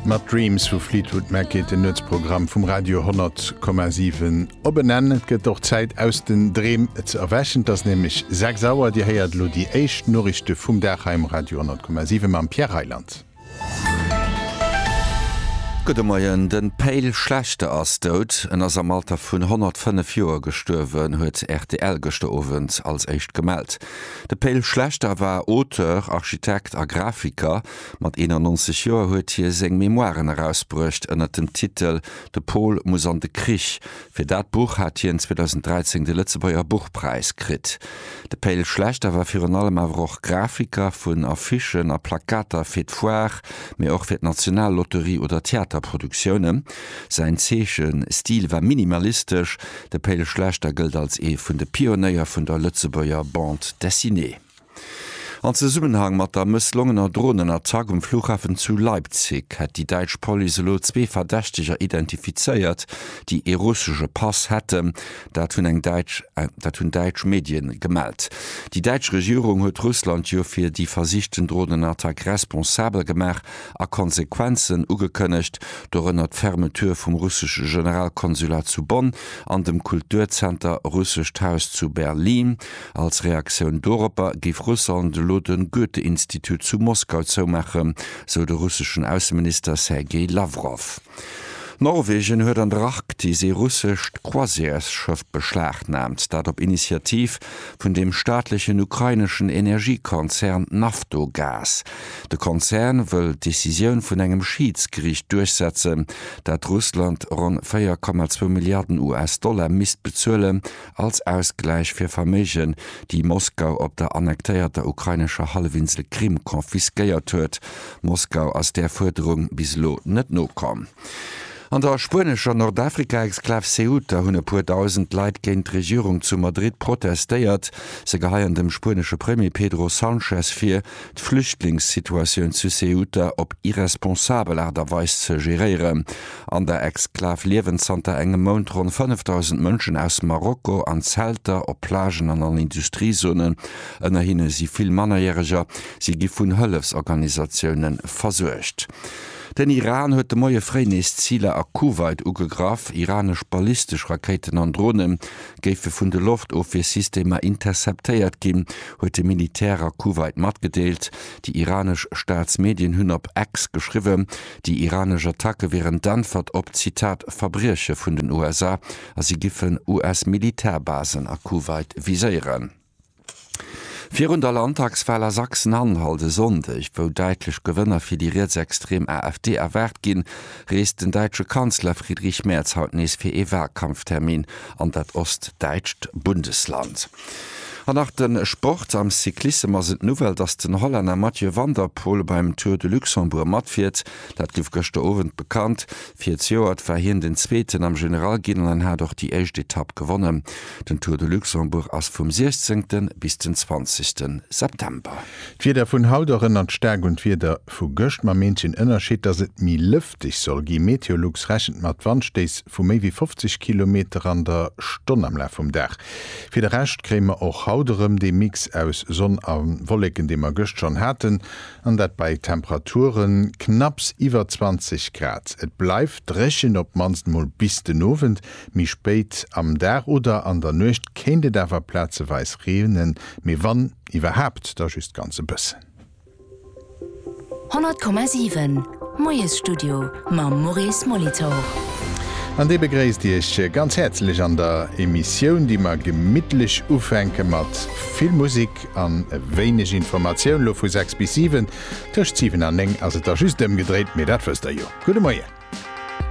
Mat Dreams vu Fleetwood Mac geet den Nuetsprogramm vum Radio 10,7 op en Enn. Et gëtt och Zäit aus den Dreem ze erwächen. Et ass nämlech 6 Auer. Dir héiert elo déi éischt Noriichte vum Dag hei um Radio 10,7 mam Pierre Reyland. Gudde Moien. De Pale Schlechter ass dout. En ass am Alter vun 105 Joer gestuerwen, huet rtl gëschter Owend als éischt gemellt. De Pe'l Schlechter war Auteur, Architekt a Grafiker. Mat 91 Joer huet hie seng Memoiren erausbruecht ënnert dem Titel De Pol muss an de Krich. Fir dat Buch hat hien 2013 de Lëtzebuerger Buchpräis kritt. De Pe'l Schlechter war virun allem awer och Grafiker vun Affichen a Plakater fir d'Foire, mee och fir d'Nationallotterie oder Theaterproduktiounen. Säin Zeechenstil war minimalistesch. De Péil Schlechter gëllt als ee vun de Pionéier vun der Lëtzebuerger Bande Dessinée. An Zesummenhang mat der mësslongener Dronenattack um Flughafen zu Leipzig hätt déi däitsch Police elo zwee Verdächteger identifizéiert, déi ee russesche Pass hätten. Dat hunn eng däitsch dat hunn däitsch Medie gemellt. Déi däitsch Regierung huet Russland jo fir déi versichten Dronenattack responsabel gemaach a Konsequenzen ugekënnegt, dorënner d'Fermeture vum russesche Generalkonsulat zu Bonn an dem Kulturzenter Russescht Haus zu Berlin. Als Reaktioun doropper géif Russland elo de Goethe-Institut zu Moskau zoumaachen, sou de russeschen Ausseminister Sergei Lawrow. Norwegen huet an der Arktis ee russescht Croisièresschëff beschlagnaamt, dat op Initiativ vun dem staatlechen ukraineschen Energiekonzern Naftogaz. De Konzern wëll d'Decisioun vun engem Schiidsgeriicht duerchsetzen, dat Russland ronn 4,2 Milliarden US-Dollar misst bezuelen, Als Ausgläich fir Verméigen, déi Moskau op der annektéierter ukrainescher Hallefinsel Krim confisquéiert huet. Moskau ass där Fuerderung bis elo net nokomm. An der spuenescher Nordafrika-Exklav Ceuta hunn e puer dausend Leit géint d'Regierung zu Madrid protestéiert. Se geheien dem spuenesche Premier Pedro Sanchez vir, d'Flüchtlingssituatioun zu Ceuta op irresponsabel Aart a Weis ze geréieren. An der Exklav liewen zanter engem Mount ronn 5.000 Mënschen aus Marokko an Zelter, op Plagen an an Industriezonen. Ënner hinne si vill Mannerjäreger. Si gi vun Hëllefsorganisatioune versuergt. Den Iran huet de Moie fréi nees Ziler a Kuwait ugegraff. Iranesch ballistesch Rakéiten an Drone géife vun de Loftofwiersystemer interceptéiert ginn, huet de Militär a Kuwait matgedeelt. Déi iranesch Staatsmedien hunn op X geschriwwen, Déi iranesch Attacke wieren d'Äntwert op, Zitat, Verbrieche vun den USA a si giffen US-Militärbasen a Kuwait viséieren. Virun der Landtagswal a Sachsen-Anhalt e Sonndeg, wou däitlech Gewënner fir déi rietsextrem AfD erwaart ginn, reest den däitsche Kanzler Friedrich Merz haut nees fir ee Walkampftermin an dat ostdäitscht Bundesland. An nach de Sport, Am Cyclissem ass et d'Nouvelle, dass den Hollänner Mathieu van der Poel beim Tour de Luxembourg matfiert. Dat gouf gëschter Owend bekannt. Virziouert war hien den Zweeten am Generalginn an hat och déi éischt Etapp gewonnen. Den Tour de Luxembourg ass vum 16 bis den 20 September. D'Wieder vun haut erënnert staark un d'Wieder vu gëscht, mam eenzegen Ënnerscheed, dass et méi lëfteg soll ginn. Meteolux rechent mat Wandstéiss vu méi wéi 50 Kilometer an der Stonn am Laf vum Dag. Fir de Rescht kréie mer och haut erëm dee Mix aus Sonn a Wolleken, dee mer gëscht schonn haten, an dat bei Temperature knapps iwwer 20 Grad. Et bleift dréchen, op d'mannst mol bis den Owend. Méi spéit am Dag oder an der Nuecht kéint et awer plazeweis reenen, mee wann iwwerhaapt, da just ganz e bëssen. 100,7 Moiesstudio mam Maurice Molitor. An dee begréisst Iech ganz häerzlech an der Emissioun, déi mer gemittlech ufänke mat vill Musek an e wéineg Informatioun, lo vu 6 bis 7. Tëscht 7 an 9 ass et da just ëmgedréit, mee dat wësst Der jo. Gudde Moien.